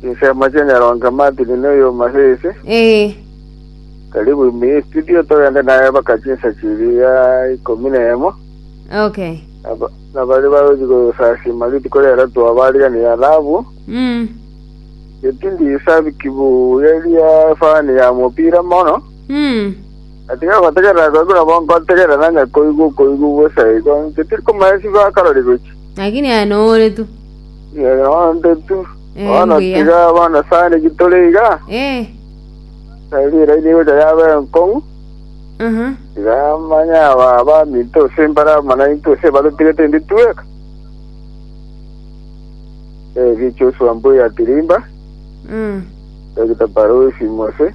Chinsemo chi'enyarongo Martin na oyoma Faith. Ee. Karibu ime ye studio togende naye baka chinsa chiri ya ikomi na emo. Okay. Naba- Nabari bagochi gosasima rituko riaro twabarigania alabu. Mm. Getindi isabiki buya eria fani ya mopira mono. Mm. Atiga gotegerera goigu nabo nkotegerera nanya koigwa koigwa bosa igo. Getiri komanya sibakarori gochi. Lakini aye nore tu. Yaya onde tu. Eh, Bono mbuya. tiga bono sani gitore iga. Eh, Tari raini gocha yabe enkong'u. aha. Tiga manya aba baminto ose mbara mana into ose barutigete ndi tueka. Eh, gicho swa mbuya tirimba. Mm. Dr. Barusi Mose.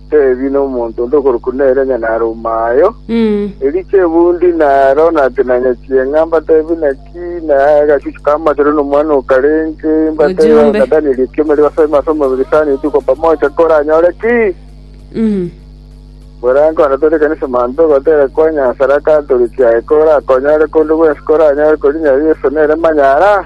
Tebi nomonto onde okorokwa nere onye narumayo. Erio Chebundi naro natinanyetie ng'a mbatebi naki, na agachuchu k'amasero nomwana okarenge, mbatebi Ojiombe. na Danieli ekiombe riba asore ase omobere sana rituko pamoja, koranyore ki? Borange onde tore ekanisa manto ogotera kwa Nyasae, raka tore kiaye, korakonyore konde gwensi koranyore korinyare Yeso nere manyara.